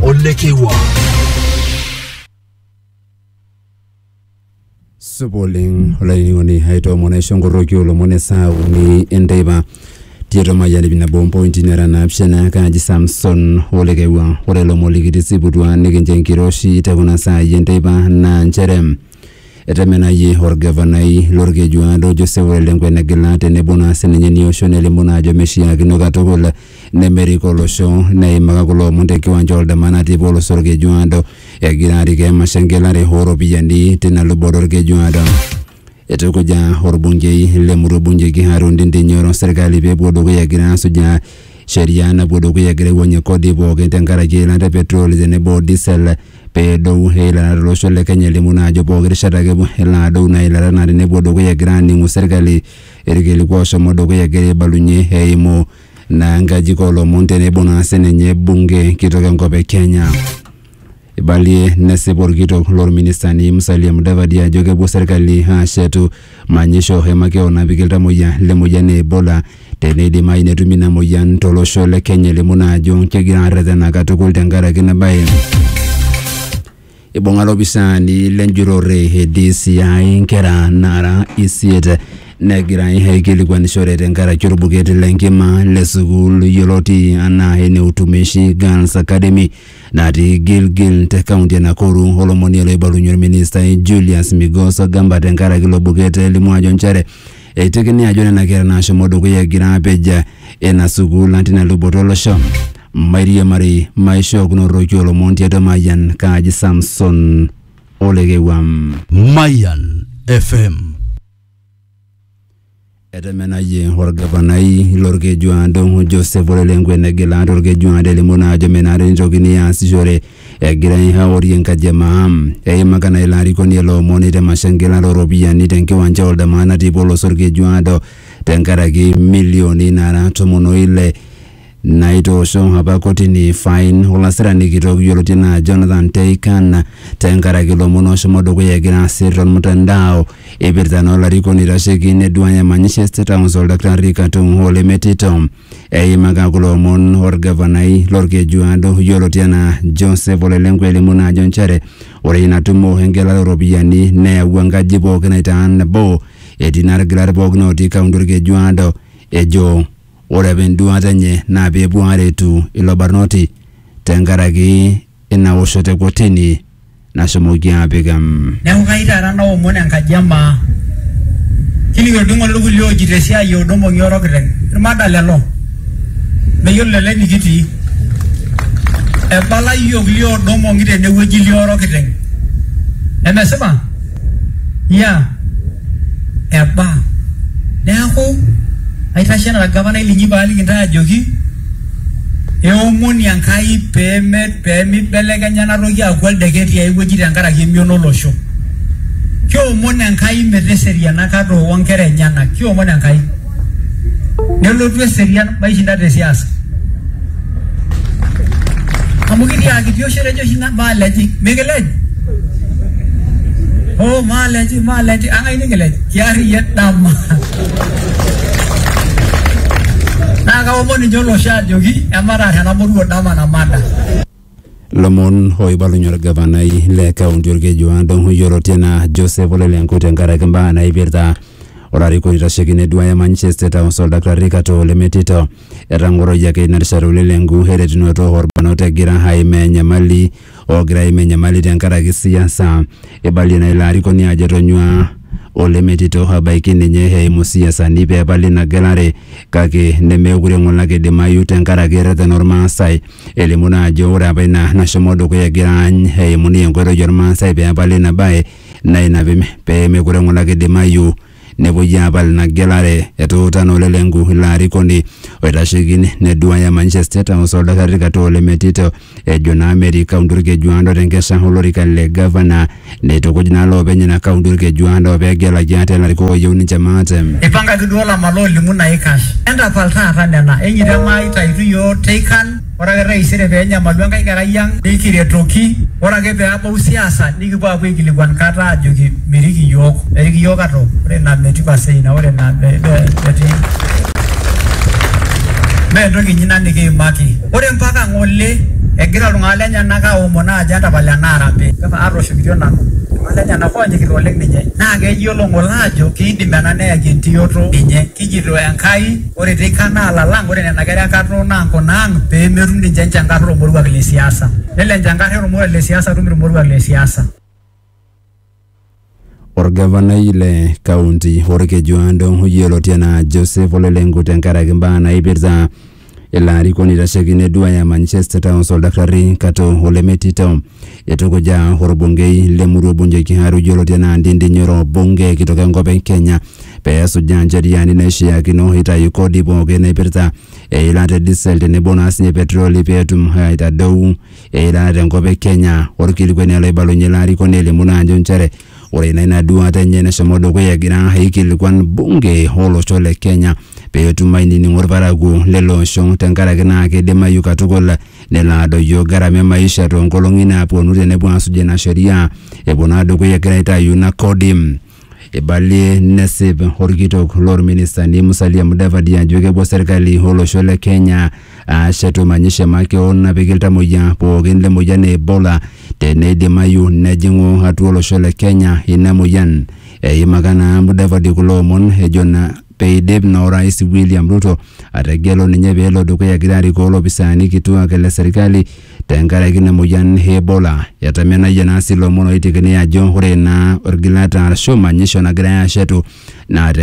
olekewa supa oleng olainining'oni aitoomon aisho nkorroki olomon esaa uni enteipa tiatua mayian ip nabo ompointi nara naapishana kaaji samson olekewa ore ilomon likitisiputua nikincho enkiroshi te kuna saai enteipa naa nchere Etemenayie olgavanai lolkejuado Jose Ole Lenku enegila tenebo naa sininye nia osho nelimu naa ajo meishiakino katukul nemerik olosho. Neimaka kulo omon te nkiwanja oldama natii apa olosho olkejuado egira arik emasho engelare oo ropiyiani tina luboto olkejuado. Eitukuja olbungei le murua Bungei Kiharu Ndindi Nyoro serkali pee epuo dukuya egira aasujaa sheria napuo dukuya egira aiwuangie kodi pooki tenkaraki eilata e petroli tenebo o disel pedou eilata tolosho le Kenya elimu naa ajo pooki rishata ake elo adou naa eilata naa tenepuo dukuya egira aaning'u serkali irkiliku oshomo dukuya egira aibalunye eimu naa nkajijik oolomon tenebo naa sininye bunge kitok enkop e Kenya. Ibalie nesipa orkitok lorministani Musalia Mudavadi ajo kepuo serkali aashetu Manyisho e makeon napiki iltamoyia le moyian e Ebola teneidimayu netumi ina moyian to losho le Kenya elimu naa ajo kegira arretena katukul tenkaraki ina bae. Ibung'a lopisaani le njurore e DCI nkera naara isiet negirai aikilikuanishore tenkaraki olbuket le nkima le sukuul yioloti anaa ene Utumishi Girls Academy natii Gilgil te kaunti e Nakuru olomoni oloibalunye olministai Julius Migos Ogamba tenkaraki ilo buket elimu ajo nchere eitekini ajo nena kera naashomo dukuya egira apej ina sukuul natii ina luboto olosho. Mairiamari maishookunoroki olomon tiatua Mayian kaaji Samson Olekewuam. Mayan FM. Etemenayie olgavanai lolkejuado Joseph Ole Lenku enegila tolkejuado elimu naa ajo menare neitokini aasishore egirai aorie enkaji e maa. Eimaka naa ilo arikoni ele omoni te masho engilata ooropiyiani te nkiwanja Oldamaa natii Polos Olkejuado tenkaraki milioni naara tomon o ile Naitoosho apa kotini fain olasirani kitok yioloti anaa Jonathan Teikan tenkaraki lomon oshomo dukuya egira asir tolmutandao eipirta naa olarikoni oitasheki neduaya manyisho e State House Oldakitari Katum hoo lemetito. Eimaka kulo omon olgavanai lolkejuado yioloti anaa Joseph Ole Lenku elimu naa ajo nchere ore ina tumo engelare o ropiyiani neyawua enkaji pooki aitaa nabo etii naa lgilat pooki ootii kaunti olkejuado ejo Ore apa enduaata enye naa pee epuo aaretu ilo barnoti tenkaraki ina woshoto e kotini nashomoki aapik em. Neaku kayieu taata naomon enkaji e maa. Kining olningo le kulie ojito esiai e Odongo ngioro kiteng. Ilmada lelo. Meyiolo lelo enikitii. Ebala iyiook lio Odongo ngi tenewueji lioro kiteng. Nemesipa? ya eba neaku aitashe anaa orgavanai linyi paaliki intae ajoki eomoni Enkai peme pemeibelekenya ena toki aaku oldeket tiae wueji tenkaraki emion olosho kiomon Enkai meteseriana kata oonkera enyenak kiomon Enkai nelotu eserian maishinda te siasa amu kitiaaki tiosho etejo oshi na maaleji mikilej oh maaleji maaleji ang'ai nikilej kiarriyie dama naa kaomon ninche olosho ajoki emataar enamoruo dama namada Lomon oibalunye olgavanai le kaunti Olkeju Adong yioloti anaa Joseph Ole Lenku tenkaraki mbaa naipirta olarikoni oitasheki neduaya manyisho e State House Oldakitari Kato Ole Metito. Etang'oroyioki ina rishata Ole Lenku eretunoto olbarnot egira aimaa enyamali oogira aimaa enyamali tenkaraki siasa. Eibalie naa ilo arikoni ajo etonyua Ole Metito abaiki ninye eimu siasani pee epali ina gelare kake nemeekure ng'ole ake eidimayu tenkaraki erreten Olmaasai. Elimu naa ajo ore apa ina nashomo dukuya egira aany eimu ninye enkoitoi ormaasai pee epali ina bae naa ina pee mekure ng'ole ake eidimayu nepuoi aapal ina gelare. Etuuta naa Ole Lenku ilo arikoni oitasheki neduaya manyisho e State House oltasat Katoo Ole Metito ejo naa metii kaunti Olkejuado te nkesha o lorika le gavana. Neitukuj naa loopeny ina kaunti olkejuado pee egelaki ate ilarikok ooyieu ninche maate. Eipangaki duo Lamar loolimu naikash. Entapal taata nena, enyito emaai taitu iyiook teikan, ore ake taisere pee enyamalu enkae kerai ang nikiretoki, ore ake pee abau siasa nikipuo aapuo aikilikuan kata aajoki mirik iyiook. Erik iyiook ate o ore ina metii pasee ina ore ina metii. Mee entoki inyi ina nikiimaki. Ore mpaka ng'ole egira iltung'ana lenyena aaomon aajo entapal ena arambe. Atooshokitia nanu iltung'ana lenyena oonyikita oleng ninye. Naa keyiolo ng'ole aajo keidim ena neyaki entiyoto ninye. Kijito Enkai ore teika naa lalang ore nena kera e nkatoo naa nkuna ang pee metum ninche enchankar oo lmoruak le siasa. Nelo enchankar oo lmoruak le siasa atum ilmoruak le siasa. Orgavanai le kaunti Orkejuado yioloti anaa Joseph Ole Lenku tenkaraki mbaa naipirta ilo arikoni oitasheki neduaya manyisho e State House Oldakitari Kato Ole Metito. Eitukuja orbungei le murua Bunjo Kiharu yioloti anaa Ndindi Nyoro bunge kitok enkop e Kenya pee esujaa ncheriani naishiakino eitayu kodi pooki naipirta eilata e diesel tenebo naa sinye petroli pee etum aitadou Eilata enkop e Kenya. Olkilikuani ele oibalunye ilo arikoni elimu naa ajo nchere ore ina ina duaata enye neshomo dukuya egira aikilikuan bunge olosho le Kenya pee etum ainining'o ilparakuo lele osho tenkaraki naa keidimayu katukul nelo adoyio gharama e maisha too nkolong'i naapuonu tenepuo aasuj ina sheria epuo naa dukuya egira aitayu ina kodi. Eibalie nesip olkitok loo lministani Musalia Mudavadi ajo kepuo serkali o losho le Kenya aashetu manyisho e makeon napiki iltamoyia pookin le moyian e Ebola teneidimayu nejing'u atua olosho le Kenya ina moyian. Eimaka naa Mudavadi kulo omon ejo naa peidip na Orais William Ruto ategelu ninye pelo dukuya egira arikoo lopisaani kituak le serikali tenkaraki ina moyian e Ebola. Etamenayie naa si lomon oitekini ajo ore naa orgilata arashu manyisho nagirai ashetu naa